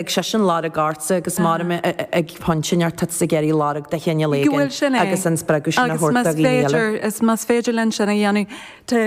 ag seisean lorg ortsa agus mura mbeidh ag pointe neart tá tusa ag iarraidh lorg de chineál éigin agus an spreagadh sin a thabhairt do dhaoine eile. Agus más féidir linn sin a dhéanamh, tá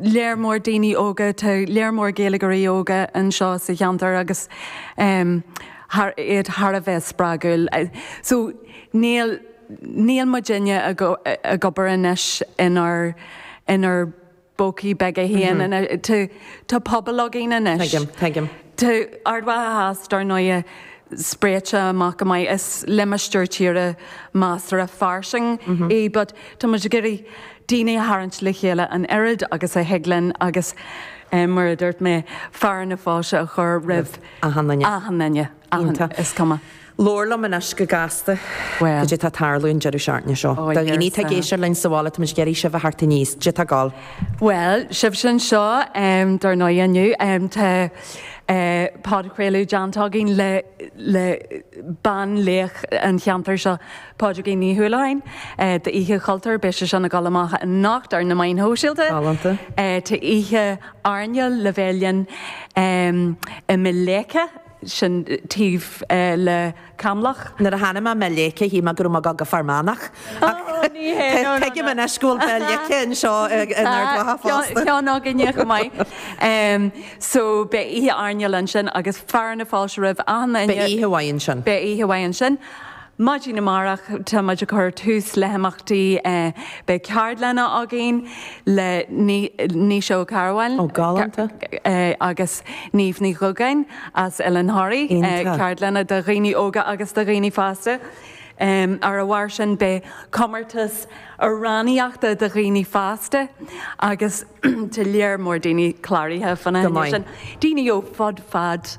lear mór daoine óga, tá lear mór Gaeilgeoirí óga anseo sa cheantar agus iad thar a bheith spreagúil. So níl, níl muidinne ag obair anois inár, inár. bpócaí beaga aonair. Tá pobal againn anois. Tá Ard Mhacha Theas, dar ndóighe, spréite amach go maith. Is limistéar tíre measartha fairsing é but tá muid ag iarraidh daoine a tharraingt le chéile an oiread agus a thig linn agus, mar a dúirt mé, fearadh na fáilte a chur roimh achan duine, is cuma. Labhair liom anois go gasta. Cad é tá ag tarlú an deireadh seachtaine seo? Do dhaoine atá ag éisteacht linn sa bhaile, táimid ag iarraidh sibh a theacht aníos. Cad é tá ag gabháil? Bhuel, sibhse anseo, dar ndóigh, inniu tá podchraoladh déanta againn le banlaoch an cheantair seo, Pádraigín Ní Uallacháin, d'Oíche Chultúir. Beidh sé sin ag dul amach anocht ar na meáin shóisialta. Tá oíche airneáil le bheith linn i mBéal Leice. sin taobh le Camloch. Nuair a chonaic mé Béal Leice shíl mé go raibh mé ag gabháil go Fear Manach ach tuigim anois go bhfuil Béal Leice anseo in Ard Mhacha fosta. Tá ceann againne chomh maith. So beidh oíche airneáil ansin agus fearadh na fáilte roimh achan duine. Beidh oíche mhaith ansin. Beidh oíche mhaith ansin. Maidin amárach tá muid ag cur tús le himeachtaí. Beidh ceardlanna againn le Naoise Mac Cathmhaoil. Ó, galánta. agus Niamh Ní Dhubhgáin as Oileán Thoraí. Iontach. Ceardlanna do dhaoine óga agus do dhaoine fásta. Ar a bharr sin beidh comórtas amhránaíochta do dhaoine fásta agus tá lear mór daoine cláraithe faoina choinne sin. Go maith. Daoine ó fud fad.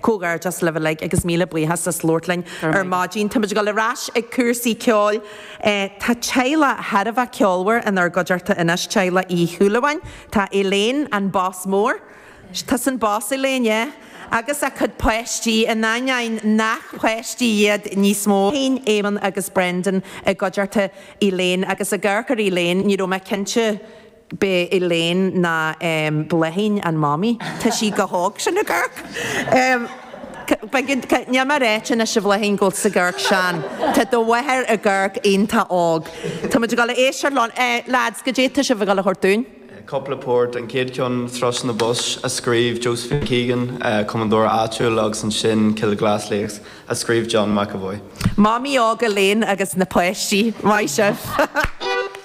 Comhghairdeas libh uilig agus míle buíochas as labhairt linn ar maidin. Táimid ag dul ar ais ag cúrsaí ceoil. Tá teaghlach thar a bheith ceolmhar inár gcuideachta anois, teaghlach Uí Shúilleabháin. Tá Elaine, an boss mór, tusa an boss Elaine, yeah? agus a cuid páistí, in ainneoin nach páistí iad níos mó. Bláithín, Éamonn agus Brendan, i gcuideachta Elaine agus ag amharc ar Elaine, ní raibh mé cinnte. B'é Elaine ná Bláithín an mhamaí. Tá sí chomh hóg sin ag amharc. Níl mé ag ráit anois, a Bhláithín, go bhfuil tusa ag amharc sean. Tá do mháthair ag amharc iontach óg. Tá muid ag dul a éisteacht leo. Lads, cad é tá sibh ag dul a thabhairt dúinn? Cúpla port, an chéad cheann Thrush in the Bush a scríobh Josephine Keegan, cumadóir áitiúil, agus ansin Kilglass Lakes a scríobh John McEvoy. Mamaí óg Elaine agus na páistí. Maith sibh!